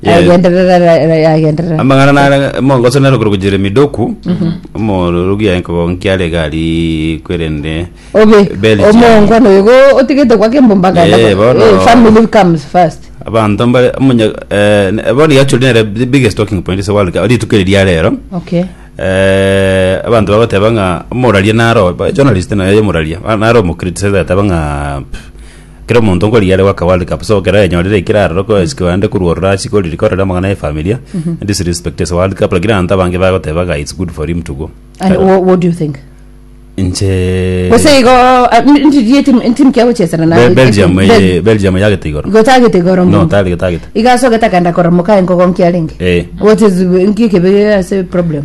Yes. Agenderera ra- ra- yagenderera. amang'ana nare mongoso nero korwa jeremi doku omorogi aye nkogonkia are gari kwerende Obe Belgium. omongo no yugo otigete kwa kembomba Eh, ganda. bono. Eh, family comes first. abanto mbare omunya eh, ne- bono gachori nere the biggest talking point is the world rituko eri ria rero Okay. eh, abanto bagoteba ng'a omoraria naro ba- journalist naye omoraria ba- naro omokritisaize ateba ng'a pff, Kera omonto nkorigia are goaka world cup so ekero ayenyorire ekero arorokwa oesikwa aende korwa ororo achie koriri korera amang'ana ya efamilia disrespect as a world cup lakini abanto abange bagoteba iga it's good for him to go And Kare- wha- what do you think? inche Gose igo ah, n- ndirie timu- entimu kia gochesana na Be- belgium Bel- eye- belgium yagete igoro gotagete igoro no mbuya. tari getagete iga asogete akagenda koramoka engogo nkiarenge Eh. what is nki ekebe ase problem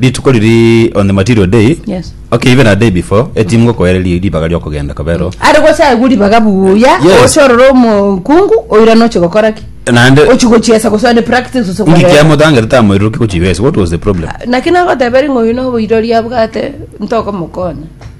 Rituko riria on the material day Yes. okay even a day before etimu gokoere ri- ribaga riokogenda kobero Are gocha igu ribaga buya, Yes. oche orore omokungu, oirane oche gokora ki? naende Ochi gochiesa gose one practice ase ngiki korera. kiamotangete tamoiroruki gochibesa what was the problem Naki nagoteberia ng'a oyo noboirori abwate, ntokomokonya.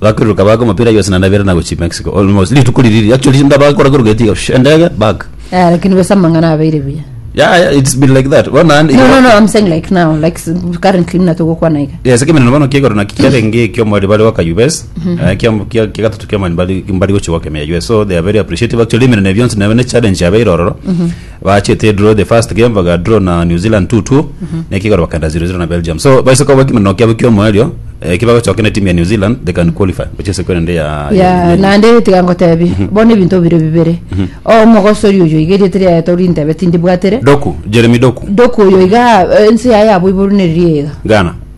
Bakiruruka baaka omopira aye yose naende abeera na gochia Mexico almost rituko riria actually singa bakora koruga etiga shh, endege back Eh, lakini besa amang'ana abeire buya yeah, yeah it's been like that bono naende no no no i'm saying like now like s- currently muna togokwana iga yes ekemeneno bono kiegoro naki kiarenge ekiomwari bari goka us eh, kia- kia- kia gatatu kiomwari bari bari gochia goka emea us so they are very appreciative actually emeneno ebio yonsi nebe ne challenge yabeire ororo Bachete draw the first game baga draw na New Zealand 2-2 neki igoro bakenda 0-0 na Belgium so baise koba ekimeno kiabo kiomoerio eh, kibagochoka na timu ya New Zealand they can qualify gocha ase kore ende ya ya naende tiga ngotebi bono ebinto bire bibere omogosori oyo iga erieta riaye torintebe tindibwatere Doku Jeremy Doku doku oyo iga eh, ense yaye yabo iborunereria iga Ghana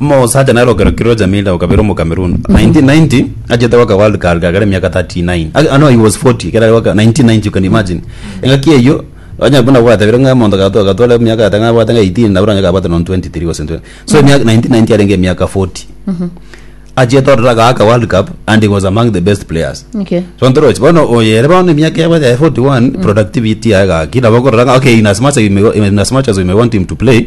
Omosaacha nere okerokire o Jamila okabera omocameroon 1990 achete goka world cup gakera emiaka 39 Ag- ah, no he was 40 ekero are goka 1990 you can imagine engaki eyio onye buna bwatebire ng'a omonto gato gatwara emiaka ata ng'a bwate ng'a 18 nabura onye kabwate non 23 gose 20 so emiaka 1990 arenge emiaka 40 achete orora gaka world cup and he was among the best players Okay. sontorochi bono oyere bono emiaka yabo ya 41 productivity yaye gaki nabo okorora ng'a okay in as much as you may, in as much as you may want him to play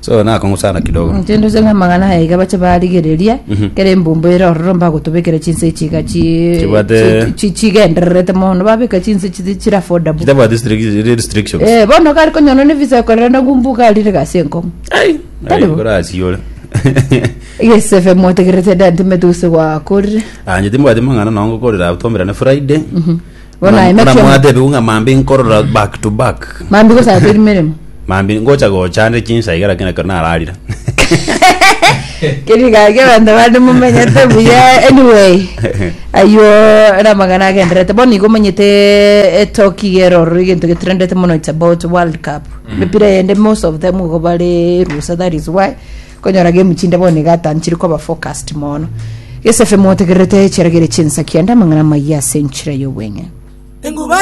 So nakong'usana kidogo. Inche nduche ng'a amang'ana aya iga bache barigereria kera embumbo ere ororo mbagotobekera chinsa echi iga chi Chibwate- chi- chi- chigendererete mono babeka chinsa echi ti- chiri affordable Chitabwati strict- restrictions. Eh, bono gari konyora ne visa ekorera na gumbu gari rire gasi enkong'u Ai, Tari bo. korasiore. egesefe motegerete dentime tuse gwakorire Aa, inche timbwati mang'ana nongo korera tomerane Friday. Bono aye Buna makioma. mwatebigwe ng'a mambi nkorora back to back Mambi gosara teri meremo. mambi ngocha gochande chinsa iga lakini ekero nararire Keri gaki abanto bande mumenyete buya anyway. Aywo ramagana agenderete bono igo omenyete etoki iga eroro egento getrendete mono it's about world cup. Mipira yende most of them igo bare rusa that is why Konya orage emu chinde bono iga atanchire koba focused mono. Gesefe motegererete echiragere chinsa kiande amang'ana amayia ase enchira y'obweng'e. Enguba